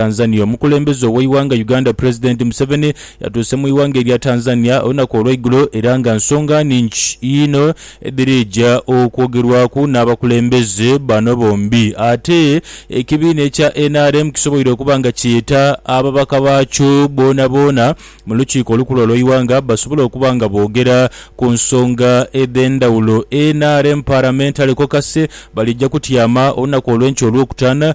Tanzania. Omukulembeze ow'eighanga Uganda Pulezidenti Museveni yatuuse mu ighanga erya Tanzania olunaku olweigulo era nga nsonga nhingi inho edhirija okwogerwaku n'abakulembeze bano bombi. Ate ekibiina ekya nrm kisoboire okuba nga kyeta ababaka baakyo boonaboona mu lukiiko olukulu olw'eighanga basobole okuba nga boogera ku nsonga edh'endhawulo. Nrm Parliamentary Caucus balija kutyama olunaku olw'enkya olwokutaano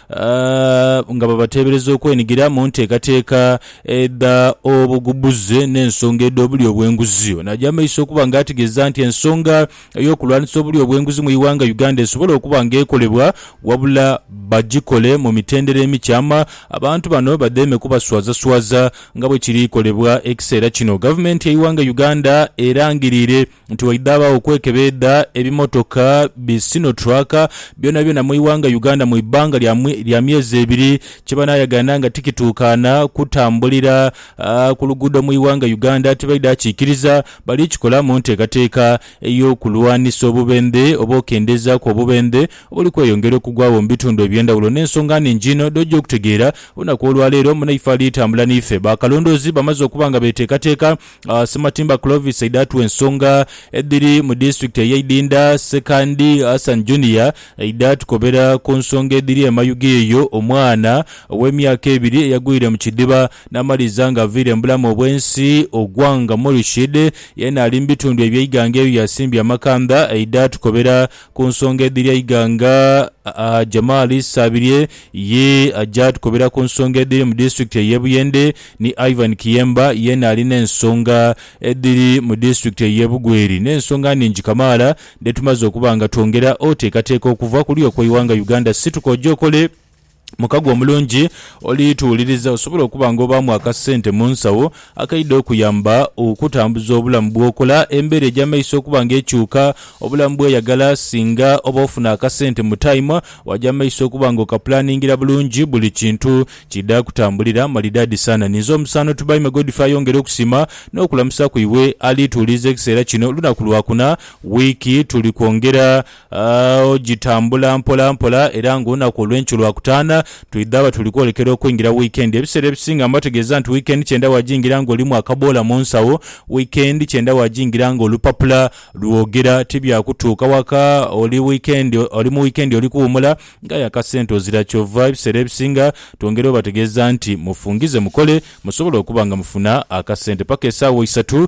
nga babateebereza okwenigira mu nteekateeka edha obugbuze n'ensonga edh'obulyo obw'enguzi. Ono aja mu maiso okuba nga ategeeza nti ensonga ey'okulwanisa obulyo obw'enguzi mu ighanga Uganda esobola okuba nga ekolebwa wabula bagikole mu mitendera emikyama abantu bano badheeme kubaswazaswaza nga bwekiri kolebwa ekiseera kino. Gavumenti yeighanga Uganda erangirire. nti waidhaabagho okwekebeedha ebimotoka bi Sinotruck byonabyona mu ighanga Uganda mu ibbanga lya myezi ebiri kye banaayagaana nga tikituukaana kutambulira ku luguudo mu ighanga Uganda tibaidha kikiriza. Bali kikola mu nteekateeka ey'okulwanisa obubendhe oba okendeezaaku obubendhe obuli kweyongera okugwagho mu bitundu eby'endhawulo n'ensonga nnhingi inho dh'oja okutegeera olunaku olwaleero. Munaife ali tambula n'ife, bakalondoozi bamaze okuba nga beteekateeka Uh, Sematimba Clovis aidatu ensonga edhiri mu disitulikiti eye Idinda, Sekandi Hassan Junior aidha tukobera ku nsonga edhiri emayuge eyo omwana ow'emyaka ebiri eyagwire mu kidiba n'amaliza nga aviire mu bulamu obw'ensi. Ogwanga Murshid yena ali mu bitundu eby'eighanga eyo yasimbye amakanda aidha tukobera Ku nsonga edhiri eighanga, Jamal Sabirye ye aja tukobera ku nsonga edhiri mu disitulikiti ey'e Buyende ni Ivan Kiyemba yeena ali n'ensonga edhiri mu disitulikiti ey'e Bugweri n'ensonga nhingi kamaala dhetumaze okuba nga twongera oteekateeka okuva kuli okw'eighanga Uganda. Situka oje okole. Mukago omulungi oli tuwuliriza osobole okuba nga obaamu akasente mu nsawo akaidha okuyamba okutambuza obulamu bw'okola, embeera egy'amaiso okuba nga ekyuka, obulamu bw'oyagala singa oba ofuna akasente mu tayimu waja mu maiso okuba nga okapulaningira bulungi buli kintu kiidha kutambulira malidaadi sana. Ninze omusaano Tubaime Godfrey ayongere okusiima n'okulamusa ku iwe ali tuwuliriza ekiseera kino lunaku lwakuna wiiki tuli kwongera A Ogitambula mpola mpola era ng'olunaku olw'enkyo Lwakutaana, twidhaba tuli kwolekera okwingira wiikendi. Ebiseera ebisinga mba tegeeza nti wiikendi kyenda waagingira ng'olimu akaboola mu nsawo. Wiikendi kyenda waagingira ng'olupapula lwogera. Ti bya kutuuka waka oli wiikendi oli mu wiikendi oli kuwumula, ng'aye akasente ozira. Kyova ebiseera ebisinga twongera obategeeza nti mufungize mukole musobole okuba nga mufuna akasente. Paka esaawa isatu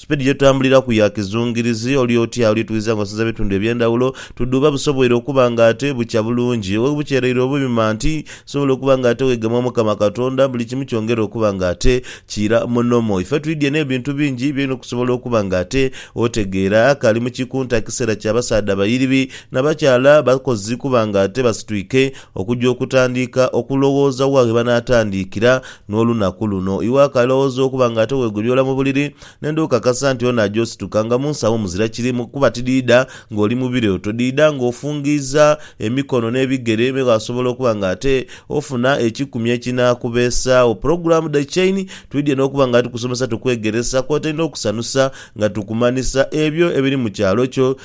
Sipiidi ye tutambuliraku ya kizungirizi, oli oti ali twidha nga osinza bitundu eby'endhawulo, tudhuuba busoboire okuba nga ate bukya bulungi. Webukyereire obuyuma nti nsobola okuba nga ate wegema Omukama Katonda, buli kimu kyongera okuba nga ate kiira mu nomo. Ife twidhie n'ebintu bingi by'olina okusobola okuba nga ate otegeera. Kali mu kikunta kiseera kya basaadha bairibi na bakyala bakozi kuba nga ate basitwike Okuja okutandiika okulowooza wa ghe banaatandiikira n'olunaku luno. Iwe akalowooza okuba nga ate weegolyoola mu buliri, nenda okakasa nti ono aja osituka nga mu nsawo muzira kirimu, kuba tidhiidha ng'oli mu birooto. Dhiidha ng'ofungiiza emikono n'ebigere, me waasobola okuba nga ate ofuna ekikumi ekinaakubeesaagho. Pulogulaamu dha Chain twidhie n'okuba nga tukusomesa, tukwegeresa, kwotaire n'okusanusa nga tukumanhisa ebyo ebiri mu kyalo kyo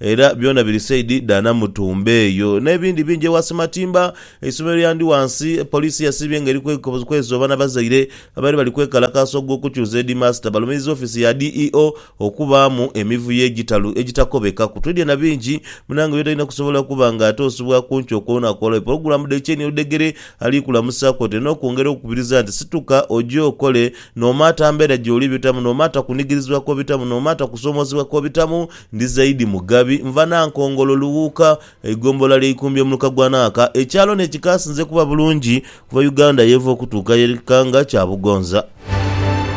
Era byona biri saidi dha Namutumba eyo. N'ebindi bingi ewa Simatimba. Eisomero lya ndi wansi. Poliisi yasiibye nga eri kwezoba na bazaire abaire bali kwekalakaasa ogw'okukyusa Heedimaasita. Balumiriza ofiisi ya DEO okubaamu emivuyo egitalu egitakobekaku. Twidhie na bingi. Munnange oyo talina kusobola kuba nga atoosebwa ku nkyo kwonakwonayo. Pulogulaamu dhe Kyeni Oludhegere ali kulamusa kwotaire n'okwongera okukubiriza nti situka oje okole, noomaata mbeera gy'oli bitamu, noomaata kunigirizibwa kw'obitamu, noomaata kusoomoozebwa kw'obitamu, Ndi Zaidi Mugabi, nva Nankongolo, Lughuuka, eigombolola lya Ikumbye muluka gwa Naaka. Ekyalo ni ekikaasinze kuba bulungi kuva Uganda yeva okutuuka yere kikanga kya Bugonza.